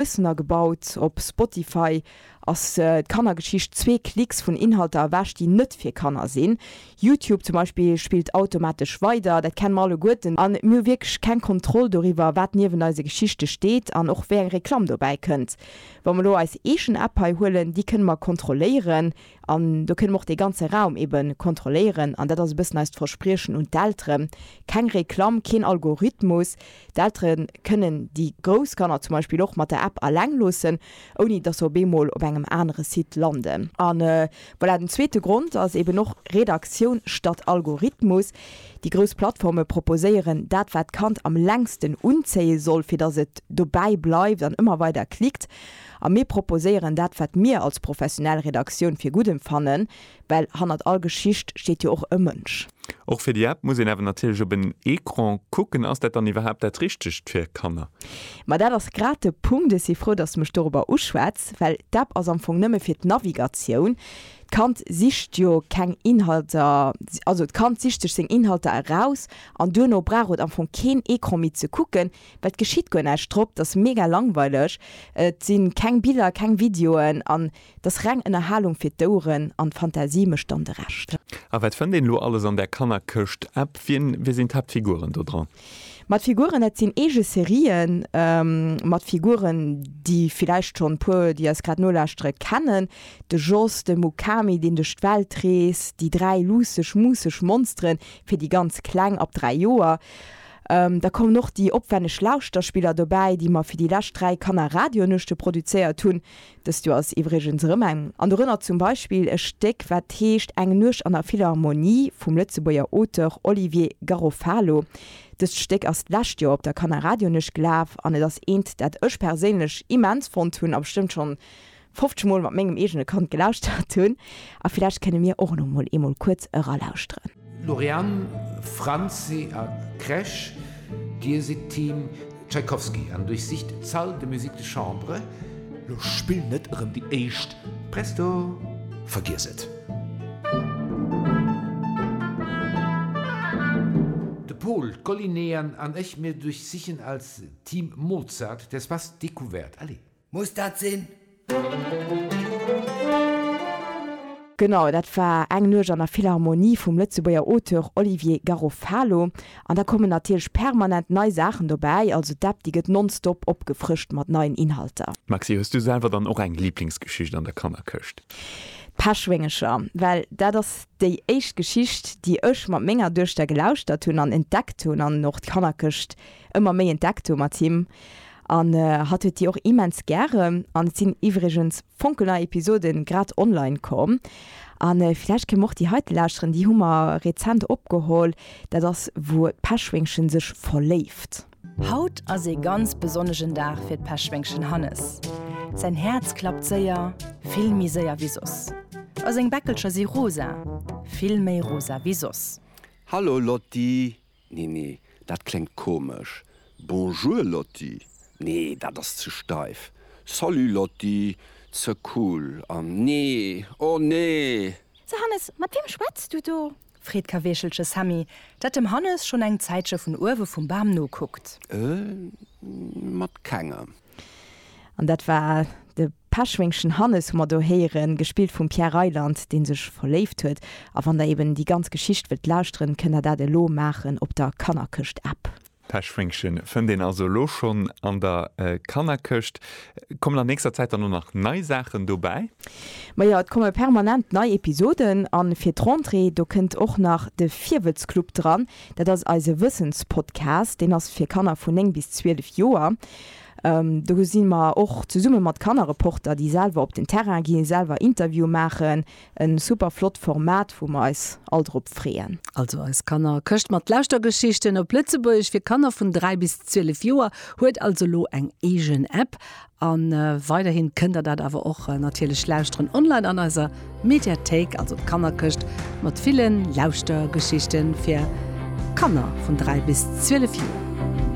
Bëssen agebaut. Op Spotify ass d'Kannergeschicht zwee Klicks vun Inhalter ewech, déi net fir Kanner sinn. Youtube zum Beispill spillt automatesch weider. Dat kenne mer alleguerten an mir hu wierklech keng Kontroll doriwwer, wat niewent eise Geschichte steet an och wéi eng Reklamm dobäi kënnt. Wa mer elo eis eegen App hei huelen, déi kënne mer kontrolléieren. An do kënne mer och dee ganze Raum ebe kontrolléieren. An dat ass e bëssen eist Verspriechen un d'Eltere, keng Reklamm, keen Algorithmus. D'Eltere kënnen déi grouss Kanner zum Beispill och mat der App aleng loossen, ouni datt se op eemol op engem anere Site landen. A voilà, den zweete Grond ass eben och Redaktioun statt Algorithmus. Déi grouss Plattforme proposéieren dat, wat d'Kand am längsten unzéie soll, fir datt et dobäi bleift an ëmmer weider klickt. A mir proposéieren dat, wat mir als professionell Redaktioun fir gutt emfannen, well hannert all Geschicht steet jo och e Mënsch. Och fir déi App muss een awer natierlech op en Ecran kucken. Ass dat dann iwwerhaapt dat Richtegt fir Kanner? Ma dat ass grad de Punkt. Ech si frou, dass de mech dorobber uschwätz, well d'App ass am Fong nëmme fir d'Navigatioun. D'Kand sicht jo keng Inhalter, also d'Kand sicht sech seng Inhalter eraus an duerno brauch et am Fong keen Ecran méi ze kucken. Well et geschitt guer näischt, drop, et ass mega langweileg, et si keng Biller, keng Videoen an et ass reng Ënnerhalung fir d'Oueren an d'Fantasie mécht dann de Rescht. A wat fënnt een elo alles an där Kannerkëscht? App, wien, wie sinn d'Haaptfiguren do dran? Ma d'Figuren, dat sinn eege Serien mat Figuren, déi villäicht schonn e puer, déi eis grad nolauschtere, kennen, de Jos, de Mukami, deen duerch d'Welt reest, déi dräi luusseg, muusseg Monsteren, fir déi ganz Kleng, ab dräi Joer, Da kommen och déi opwänneg Lauschterspiller dobäi, déi mer fir déi lescht dräi Kanner-Radionuechte produzéiert hunn. Dëst Joer ass iwwregens erëm eng an. Dorënner zum Beispill e Stéck, wat heescht Eng Nuecht an der Philharmonie vum Lëtzebuerger Auteur Olivier Garofalo. Dëst Stéck ass d'lescht Joer op der Kanner-Radionuecht gelaf an et ass eent, dat ech perséinlech immens fonnt hunn a bestëmmt schonn 50 mol mat mengem eegene Kand gelauschtert hunn a villäicht kënne mir och elo mol eemol kuerz eralauschteren. Lauriane, Franzi a Kresch, Dir sidd Team Tschaikowski an duerchsicht d'Salle de musique de chambre. Lo spill net erëm déi éischt. Presto, vergiess et! De Pol, d'Collineen an ech, mir duerchsichen als Team Mozart d'Espace découverte. Allez! Muss dat sinn? Genau, dat war Eng Nuecht an der Philharmonie vum Lëtzebuerger Auteur Olivier Garofalo. An da kommen natierlech permanent nei Saachen dobäi, also d'App déi gëtt nonstop opgefrëscht mat neien Inhalter. Maxi, hues du selwer dann och eng Liblingsgeschicht an der Kannerkëscht? D'Peschwéngecher, well dat ass déi éischt Geschicht, déi ech mat menger Duechter gelauschtert hunn an entdeckt hunn an och d'Kannerkëscht ëmmer méi entdeckt hu mat him an hatt huet déi och immens gären an et sinn iwwregens fonkelnei Episoden grad online komm an villäicht kéim och déi heite lauschteren, déi hu mer rezent opgeholl, dat ass wou d'Peschwéngchen sech verléift. Haut ass ee ganz besonnegen Dag fir d'Peschwéngchen Hannes. Säin Häerz klappt séier, vill méi séier wéi soss a seng Bäckelcher si rosa, vill méi rosa wéi soss. Hallo Lotti, Nee, nee, dat kléngt komesch. Bonjour Lotti, Nee, dat ass ze steif. Salut Lotti, Ze cool. An nee, oh nee! So Hannes, mat weem schwätz du do? Freet Kaweechelche Sammy, dat dem Hannes schonn eng Zäitche vun uewe vum Bam nokuckt. Mat kengem. An dat war de Peschwéngschen Hannes, hu mer do héieren, gespillt vum Pierre Reyland, dee sech verléift huet. A wann der eben déi ganz Geschicht wëllt lauschteren, kënnt der dat elo maachen op der Kannerkëscht-App. D'Peschwéngchen fënnt een also elo schonn an der Kannerkëscht. Kommen an nächster Zäit dann och nach nei Saachen dobäi? Ma jo, et komme permanent nei Episoden. A fir d'Rentrée, do kënnt och nach de Virwëtzclub dran. Dat ass eise Wëssenspodcast. Deen ass fir Kanner vun 9 bis 12 Joer. Do si mer och zesumme mat Kannerreporter, déi selwer op den Terrain ginn, selwer Interviewe maachen. E super flott Format, wou mer eis all drop freeën. Also eis Kannerkëscht mat Lauschtergeschichten op Lëtzebuergesch fir Kanner vun 3 bis 12 Joer huet also elo eng eegen App. A weiderhi kënnt der dat awer och natierlech lauschteren online an eiser Mediathéik. Also d'Kannerkëscht mat ville Lauschtergeschichten fir Kanner vun 3 bis 12 Joer.